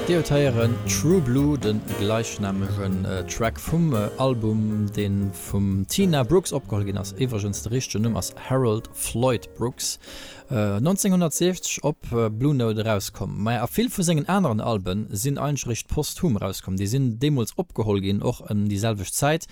Dir huet héieren True Blue, de gleichnamegen Track vum Album, dee vum Tina Brooks opgeholl ginn ass. Iwwregens, de richtegen Numm ass Harold Floyd Brooks, 1960 op Blue Note erauskomm. Mä a vill vu sengen aneren Alben sinn eigentlech posthum erauskomm, déi sinn deemools opgeholl ginn, och ëm déi selwecht Zäit,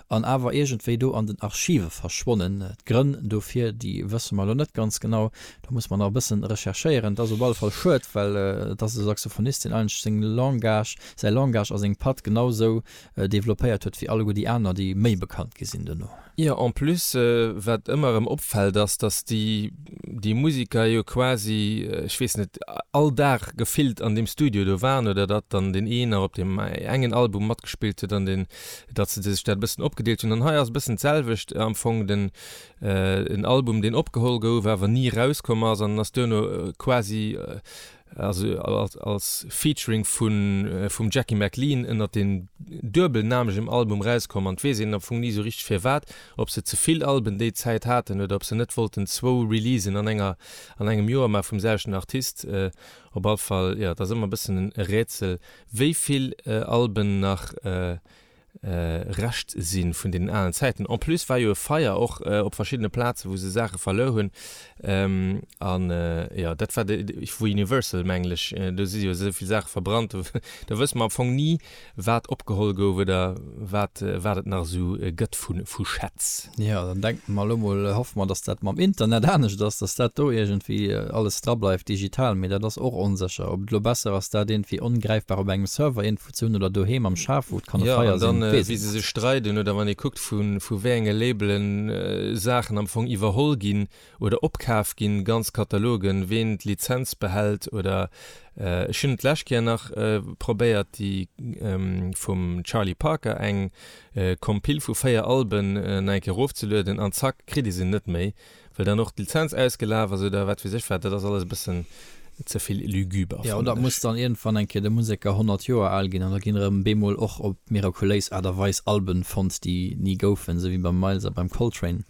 an awer iergendwéi do an den Archive verschwonnen. D'Grënn dofir, déi wësse mer elo net ganz genau, do muss mer nach e bëssen recherchéieren. Et ass op alle Fall schued, well et ass e Saxophonist, deen eigentlech seng Langage, säi Langage a seng Patt genau esou developpéiert huet, wéi alleguer déi aner, déi méi bekannt gi sinn duerno. Jo, en plus, wat ëmmer erëm opfält, ass, dass déi, déi Musiker jo quasi, ech weess net, all Dag gefillt an deem Studio do waren oder datt dann deen een nach op deem engen Album matgespillt huet an deen datt se sech dat e bëssen opgedeelt hunn an hei ass e bëssen d'selwecht am Fong, den en Album deen opgeholl gouf awer ni erauskomm ass an ass duerno quasi also als Featuring vun vum Jackie McLean ënnert deem duebelnamegem Album erauskomm an et weess een am Fong ni esou richteg firwat, ob se ze vill Alben déi Zäit haten oder ob se net wollten zwou Releasen an enger an engem Joer ma vum selwechten Artist, op all Fall jo et ass ëmmer e bëssen e Rätsel wéi vill Alben nach Rescht si vun deenen alen Zäiten. En plus war jo e Feier och op verschiddene Plaze wou se Saache verluer hunn an jo dat war vu Universal mengen ech, do si jo esou vill Saache verbrannt, do wësse mer am Fong ni wat opgeholl gouf oder wat et nach esou gëtt. vu Schätz. Ja, dann denken mer elo mol, hoffe mer, dass dat mam Internet anescht ass, dass dat do iergendwéi alles drableift digital, mee dat ass och onsécher, ob et elo besser ass, dat iergendwéi ongräifbar op engem Server iergendwou ze hunn oder doheem am Schaf, wou et kann e Feier sinn, weess ech net. Wéi se sech streiden oder wann ee kuckt, vu wéi enge Labelen Saachen am Fong iwwerholl ginn. Oder opkaf ginn ganz Katalogen, ween d'Lizenz behält oder ech hunn et d'lescht Kéier nach probéiert déi vum Charlie Parker eng Compile vu 4 Alben nach eng Kéier erofzelueden an zack kritt ee se net méi well dann och d'Lizenz ausgelaf ass oder wat weess ech wat. Dat ass alles e bëssen. ze vill luguber. Jo, dat muss dann iergendwann eng Kéier de Museker 100 Joer al ginn an da ginn erëm bemol och op mirakuléis Aart a Weis Alben fonnt, déi ni goufen, esou wéi beim Miles a beim Coltrane.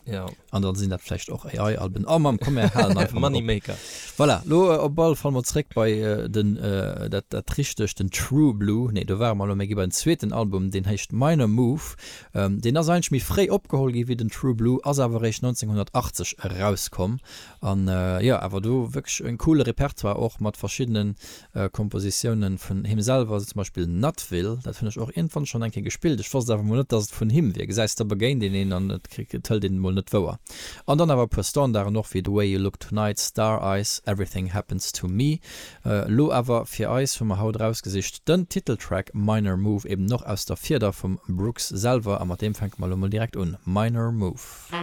An dann sinn dat vläicht och AI-Alben. Oh Mamm, komm mir halen einfach mol op. Voilà, lo op alle Fall mol zréck bei den, dat dat richtegt, den True Blue, nee do ware mer elo, mä gi bei den zweeten Album, deen héicht Minor Move. Deen ass eigentlech méi fréi opgeholl gi wéi den True Blue, ass awer eréischt 1980 erauskomm. An jo, awer do wierklech en coole Repertoire och mat verschiddene Kompositiounen vun him selwer, sou zum Beispill Nutville, dat hunn ech och iergendwann schonn eng Kéier gespillt, ech wosst awer mol net, dass et vun him wier, gesäis, da begéint een een an et hëlt een et mol net wouer. An dann awer e puer Standarden och, wéi The Way You Look Tonight, Star Eyes, Everything Happens to Me. Elo awer fir eis hu mer haut erausgesicht den Titeltrack Minor Move, eben och aus der Fieder vum Brooks selwer, a mat deem fänke mer elo mol direkt un, Minor Move.